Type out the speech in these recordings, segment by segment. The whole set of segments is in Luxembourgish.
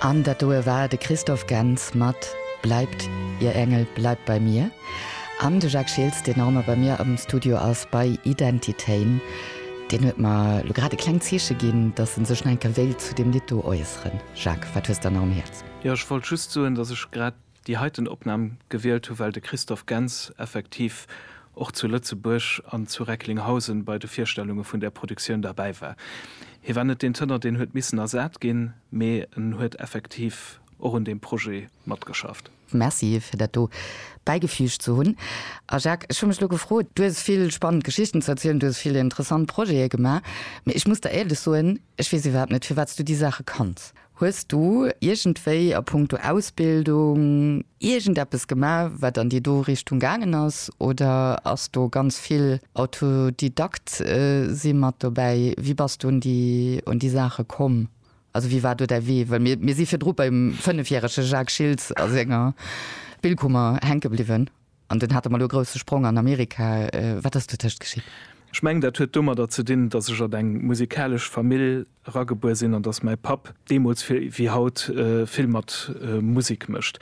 An dat doe war de Christoph Gentz mat Bleibt, Ihr Engel bleibt bei mir. An de Jacques Schiltz, deen nach ëmmer bei mir am Studio ass bei Identitéin, deen huet mer elo grad e klengt Zeeche ginn, dass en sech nach eng Kéier wéilt zu deem Lidd do äusseren. Jacques, wat hues de dann nach um Häerz? Jo, ech wollt just soen, dass ech grad déi heiten Opnam gewielt hu well de Christoph Gentz effektiv och zu Lëtzebuerg an zu Recklinghausen bei de Virstellunge vun där Produktioun derbäi war. Hie war net deen Tënner deen huet missen ersat ginn, mee en huet effektiv och un deem Projet matgeschafft. Merci fir dat do bäigefüügt ze hunn. A Jacques, ech hu mech elo gefrot, du hues vill spannend Geschichten ze erzielen, du hues vill interessant Projete gemaach, mee ech muss der éierlech soen, ech weess iwwerhaapt net firwat s du déi Saache kanns. Hues du iergendwéi a punkto Ausbildung iergendeppes gemaach, wat an déi do Richtung gaangen ass, oder ass do ganz vill Autodidakt si mat dobäi? Wéi bass du un déi Saache komm? Also wéi war do däi Wee? Well mir si virdru beim fënnefjärege Jacques Schiltz a senger Spillkummer hänke bliwwen an dunn hate mer elo e grousse Sprong an Amerika. Wat ass dotëscht geschitt? Ech mengen, dat huet domadder ze dinn, datt ech an eng musikalesch Famill eragebuer sinn an dass mäi Papp deemools vill wéi haut vill mat Musek mécht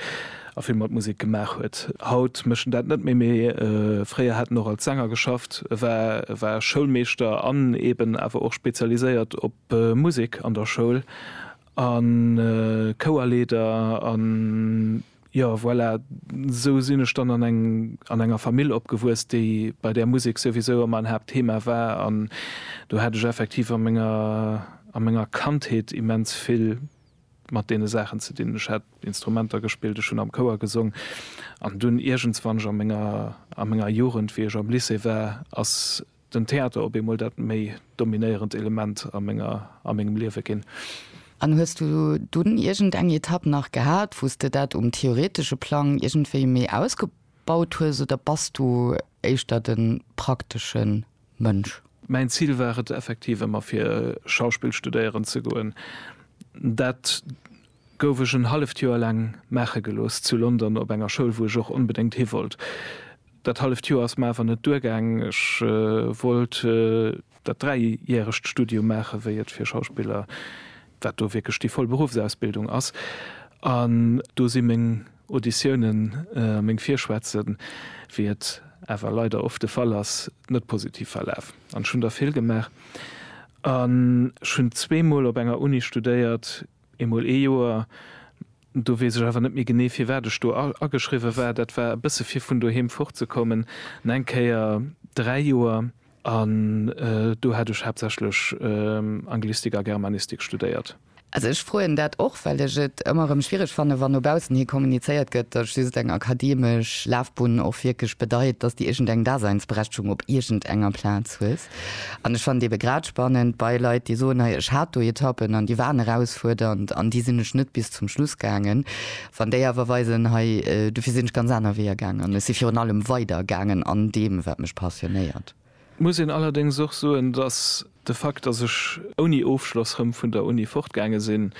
a vill mat Musek gemaach huet. Haut mécht en dat net méi, mee fréier hat en och als Sänger geschafft. E war e war Schoulmeeschter an eeben awer och spezialiséiert op Musek an der Schoul a Chouerleeder a. Jo, voilà, esou sinn ech dann an eng an enger Famill opgewuess, déi bei där Musek souwisou ëmmer en Haaptthema war an do hat ech effektiv a menger a menger Kandheet immens vill mat deene Saachen ze dinn. Ech hat Instrumenter gespillt, ech hunn am Chouer gesong an dunn iergends, wann ech a menger a menger Jugend, wéi ech am Lycée war, ass Den Theater op eemol dat méi dominéierend Element a menger, a mengem Liewe ginn. An hues du dunn iergend eng Etapp nach gehat, wou s de dat um theoretesche Plang iergendwéi méi ausgebaut hues, oder bass du éischter de praktesche Mënsch? Mäin Zil war et effektiv ëmmer fir Schauspill studéieren ze goen. Dat gouf ech en halleft Joer laang maache gelooss zu London op enger Schoul, wou ech och onbedéngt hi wollt. Dat halleft Joer ass mer awer net duergaang. Ech wollt dat dräijähregt Studium maache wéi et fir Schauspiller, wat do wierklech déi voll Beruffsausbildung ass, an do si meng Auditiounen a meng Virschwätzen, wéi et awer leider oft de Fall ass, net positiv verlaf. An ech hunn der vill gemaach an ech hunn zweemol op enger Uni studéiert, Eemol ee Joer, do weess ech awer net méi genee, firwat ech do ageschriwwe war, dat war e bësse fir vun doheem fortzekommen, an eng Kéier dräi Joer, an do hat ech haaptsächlech Anglistik a Germanistik studéiert. Also ech froen dat och, well ech et ëmmer erëm schwiereg fannen, wann no baussen hi kommunizéiert gëtt, dass just eng akademesch Lafbunn och wierklech bedeit, dass de iergendeng Daseinsberechtegung op iergendenger Plaz hues. An ech fannen et ebe grad spannend bei Leit, déi soen, hei ech hat do Etappen an déi waren erausfuerdernd an déi sinn ech net bis zum Schluss gaangen, wann déi awer weisen, hei dofir sinn ech ganz aner Weeër gaangen an ech si virun allem weider gaangen an deem wat mech passionéiert. Muss een allerdéngs och soen, datt de Fakt, datt ech ouni Ofschloss rëm vun der Uni fortgaange sinn,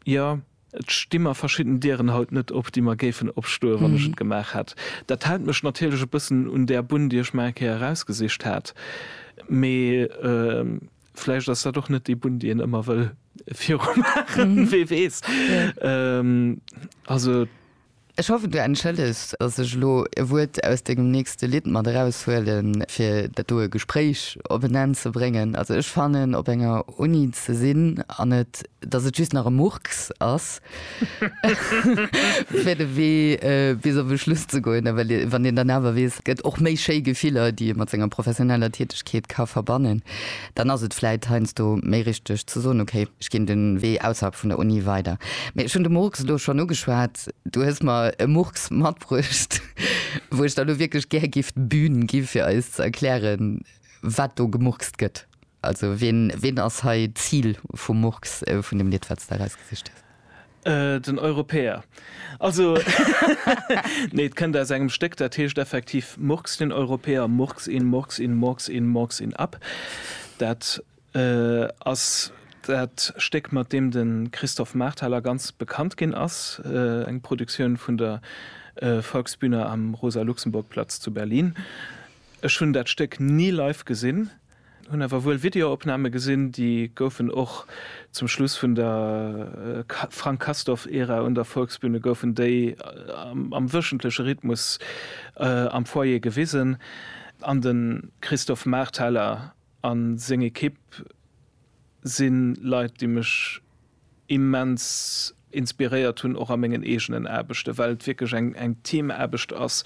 jo. Et sti mer verschidden Dieren haut net op, déi mer géifen opstoe wann ech et gemaach hätt. Dat hält mech natierlech e bëssen un där Bunn, déi ech mer eng Kéier erausgesicht hat. Mee vläicht ass dat och net déi Bunn, déi een ëmmer wëll virumaachen, wee weess. Also. Ech hoffen du entschëllegs, dass ech elo e Wuert aus dengem nächste Lidd mat eraus huelen, fir dat doe Gespréich op en Enn ze bréngen. Also ech fannen, op enger Uni ze sinn an et, dass et just nach e Murks ass, fir de Wee bis op e Schluss ze goen, well wann een dann awer weess, et gëtt och méi schéi Gefiller, déi ee mat senger professioneller Tätegkeet ka verbannen. Dann ass et vläit heiansdo méi richteg ze soen, okay, ech ginn de Wee ausserhalb vun der Uni weider. Mee ech hunn de Murks elo schonn ugeschwat. Du hues mer e Murks matbruecht, wou ech der elo wierklech gär géif d'Bühn gi fir eis ze erklären, wat do gemurkst gëtt. Also wien ass hei d'Zil vum Murks, vun deem Lidd, wat s de erausgesicht hues? Äh, den Europäer. Also, nee, et kënnt aus engem Stéck, dat heescht effektiv Murks den Europäer, Murks in, Murks in, Murks in, Murks in ab. Dat äh, ass dat Stéck, mat deem de Christophe Marthaler ganz bekannt ginn ass, äh, eng Produktioun vun der äh, Volksbühne am Rosa-Luxemburg-Platz zu Berlin. Ech hunn dat Stéck ni live gesinn. Hun awer wuel Videoopname gesin, déi goufen och zum Schluss vun der Frank Castorf Ära un der Volksbühne goufen déi am wöchentleche Rhythmus am Foyer gewisen an den Christophe Marthaler an seng Equipe si Leit déi mech immens inspiréiert hun och a mengen eegenen Aarbechten, well et wierklech eng Teamaarbecht ass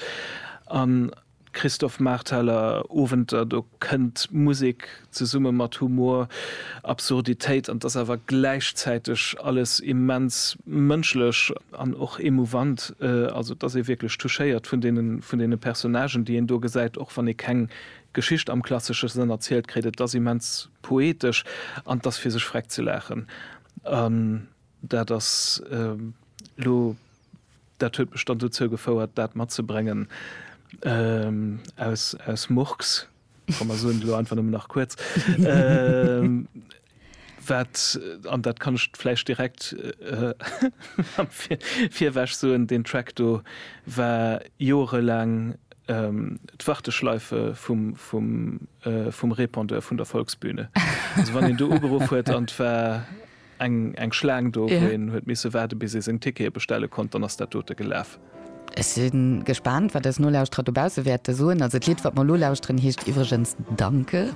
an. Christophe Marteller, Owenter, do kënnt Musek zesumme mat Humor, Absurditéit an 't ass awer gläichzäiteg alles immens mënschlech an och emouvant, also 't ass ee wierklech touchéiert vun deene vun deene Personnagen, déi een do gesäit, och wann ee keng Geschicht am klassesche Sënn erzielt kritt. Et ass immens poetesch an 't ass fir sech vreckt ze laachen. An dat ass elo Dat huet mech dann dozou gefouert, dat matzebréngen aus Murks, komm mer soen et elo einfach nëmmen nach kuerz, wat, an dat kann ech vläicht direkt virwech soen, deen Track do war joerelaang d'Warteschleife vum Répondeur vun der Volksbühne. Also wann een do ugeruff huet an et war Eng Schlaang do, wou een huet misse waarde bis ee seng Tickete bestelle konnt, dann ass dat dote gelaf. Ech si gespaant, wat eis Nolauschterer dobausse wäerte soen. Also d'Lidd, wat mer elo lauschteren, heescht iwwregens Danke.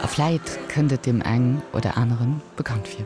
A vläit kënnt et deem eng oder aneren bekannt vir.